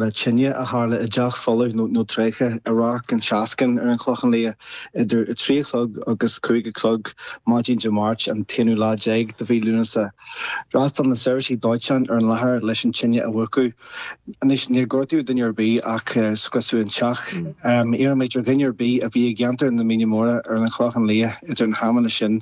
le tine a tharla i dteach folamh nó tréigthe i Radharc an tSeascainn ar an Chlochán Liath idir 3 a chlog agus 5 a chlog maidin Dé Máirt an t-aonú lá déag de mhí Lúnasa. D'fhreastail na seirbhísí dóiteáin ar an láthair leis an tine a mhúchadh. Anois, níor gortaíodh duine ar bith ach scriosadh an teach. Iarraimid ar dhuine ar bith a bhí i gceantar na Míne Móra ar an Chlochán Liath idir na hamanna sin,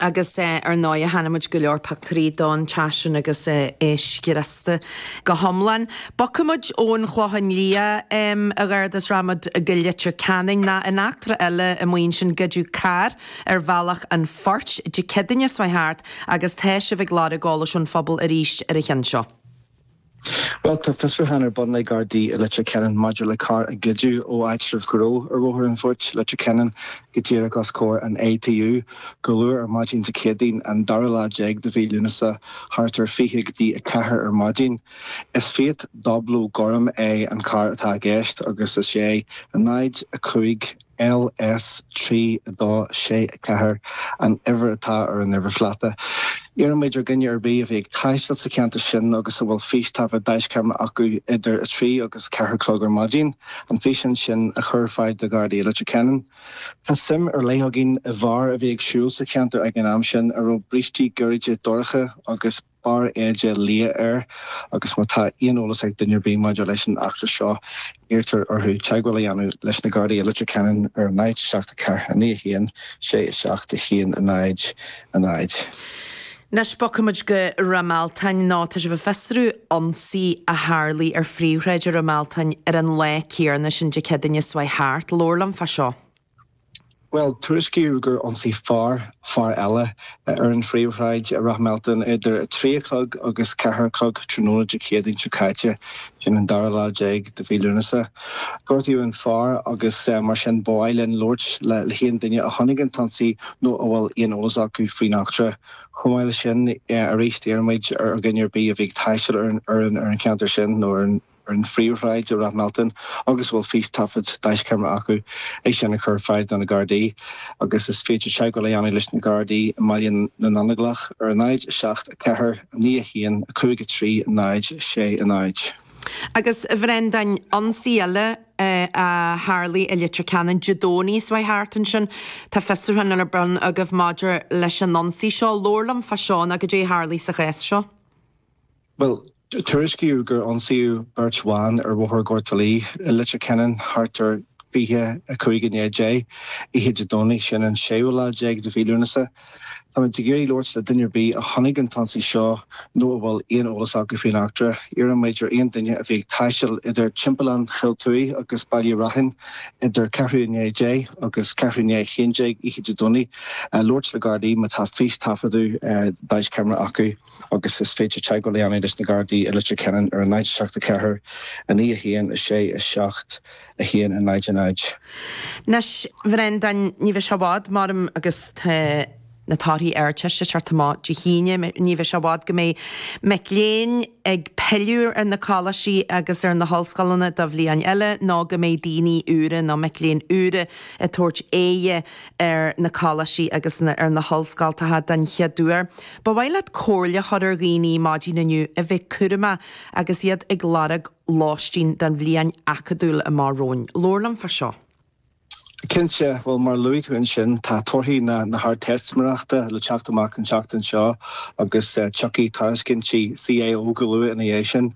Agus ar ndóigh chonaic muid go leor pictiúirí don teach sin agus é scriosta go hiomlán. Bogfaidh muid ón Chlochán Liath a Gharda is rachaidh muid go Leitir Ceanainn, ná in eachtra eile amuigh ansin goideadh carr ar Bhealach an Phoirt Dé Céadaoin seo a chuaigh thart agus tá sibh ag lorg eolais ón phobal arís ar an cheann seo. Bhuel, tá fiosrúchán ar bun ag Gardaí i Leitir Ceanainn maidir le carr a goideadh ó áitreabh gnó ar Bhóthar an Phoirt, Leitir Ceanainn, go díreach os comhair an ATU, go luath ar maidin Dé Céadaoin, an dara lá déag de mhí Lúnasa, thart ar fiche go dtí a ceathair ar maidin. Is Fiat Doblo gorm é an carr atá i gceist agus is é 0, 5 LS 3, 2, 6, 4, an uimhir atá ar an uimhirphláta. Iarraimid ar dhuine ar bith a bhí ag taisteal sa cheantar sin agus a bhfuil fístaifead deaischeamara acu idir 3 agus 4 a chlog ar maidin, an físeán sin a chur ar fáil do Ghardaí Leitir Ceanainn. Tá suim ar leith againn i bhfear a bhí ag siúl sa cheantar ag an am sin a raibh brístí gairide dorcha agus. barr éide liath air agus má tá aon eolas ag duine ar bith maidir leis an eachtra seo, iarrtar orthu teagmháil a dhéanamh leis na Gardaí i Leitir Ceanainn ar a náid, 7 4 9 1 6 7 1 0 0. Anois bogfaidh muid go Ráth Mealtain nó tá sibh ag fiosrú ionsaí a tharlaigh ar phríomhshráid i Ráth Mealtain ar an lá céanna sin Dé Céadaoine seo a chuaigh thart. Labhair liom fá seo. Bhuel, tuairiscíodh gur ionsaigh fear fear eile, ar an phríomhshráid i Ráth Mealtain idir a trí a chlog agus ceathair a chlog tráthnóna Dé Céadaoin seo caite, sin an dara lá déag de mhí Lúnasa. Gortaíodh an fear agus mar sin ba mhaith linn labhairt le haon duine a chonaic an t-ionsaí nó a bhfuil aon eolas acu faoin eachtra. Chomh maith leis sin arís iarraimid ar dhuine ar bith a bhí ag taisteal ar an cheantar sin nó ar an ar an phríomhshráid i Ráth Mealtain agus a bhfuil fístaifead deaischeamara acu, é sin a chur ar fáil do na Gardaí agus is féidir teagmháil a dhéanamh leis na Gardaí i mBaile na nGallóglach ar a náid, 7, 4, 9, 1, 5, 3, 0, 6, 0. Agus, a Bhreandáin, ionsaí eile a tharlaigh i Leitir Ceanainn Dé Domhnaigh seo a chuaigh thart ansin. Tá fiosrúchán ar bun agaibh maidir leis an ionsaí seo. Labhair liom fá seo ná goidé a tharlaigh sa chás seo? Bhuel, tuairiscíodh gur ionsaíodh beirt bhan ar Bhóthar Ghort Laoi i Leitir Ceanainn thart ar 25 i ndiaidh a 10 oíche Dé Domhnaigh, sin an séú lá déag de mhí Lúnasa. Tá muid ag iarraidh labhairt le duine ar bith a chonaic an t-ionsaí seo nó a bhfuil aon eolas acu faoin eachtra. Iarrann muid ar aon duine a bhí ag taisteal idir Timpeallán Chill Tuí agus Baile Raithin idir ceathrú i ndiaidh a 10 agus ceathrú i ndiaidh a 11 oíche Dé Domhnaigh labhairt le Gardaí má tá fístaifeadadh deaischeamara acu. agus is féidir teagmháil a dhéanamh leis na Gardaí i Leitir Ceanainn ar a náid 7 4 9 1 6 7 1 a náid a náid. Anois a Bhrendan, ní bheidh sé i bhfad, maram agus tá na torthaí Ardteiste ag teacht amach Dé hAoine, ní bheidh sé i bhfad go mbeidh mic léinn ag pilleadh ar na coláistí agus ar na hollscoileanna do bhliain eile nó go mbeidh daoine úra nó mic léinn úra ag tabhairt aghaidhe ar na coláistí agus ar na hollscoltacha den chéad uair. Ba mhaith leat comhairle a chur ar dhaoine maidin inniu a bheith cúramach agus iad ag lorg lóistín don bhliain acadúil amach romhainn. Labhair liom fá seo. Cinnte, bhuel mar a luaigh tú ansin tá torthaí na hArdteistiméireachta le teacht amach an tseachtain seo agus tiocfaidh tairiscintí CAO go luath ina dhiaidh sin.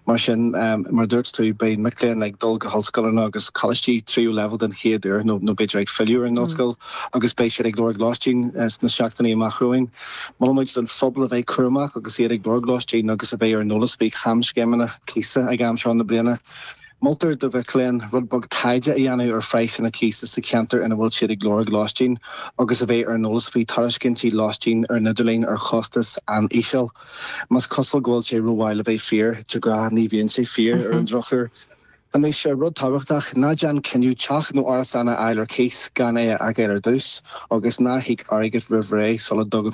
Mar sin, mar a dúirt tú, beidh mic léinn ag dul go hollscoileanna agus coláistí tríú leibhéal den chéad uair nó b'fhéidir ag filleadh ar an ollscoil. agus beidh siad ag lorg lóistín sna seachtainí amach romhainn. Molann muid don phobal a bheith cúramach agus iad ag lorg lóistín agus a bheith ar an eolas faoi chamscéimeanna cíosa ag am seo na bliana. Moltar do mhic léinn rud beag taighde a dhéanamh ar phraghsanna cíosa sa cheantar ina bhfuil siad ag lorg lóistín agus a bheith ar an eolas faoi thairiscintí lóistín ar an idirlíon ar chostas an-íseal. Más cosúil go bhfuil sé rómhaith le bheith fíor, de ghnáth ní bhíonn sé fíor, ar an drochuair. Anois, rud tábhachtach, ná déan cinneadh teach nó árasán a fháil ar cíos gan é a fheiceáil ar dtús agus ná híoc airgead roimh ré sula dtugann tú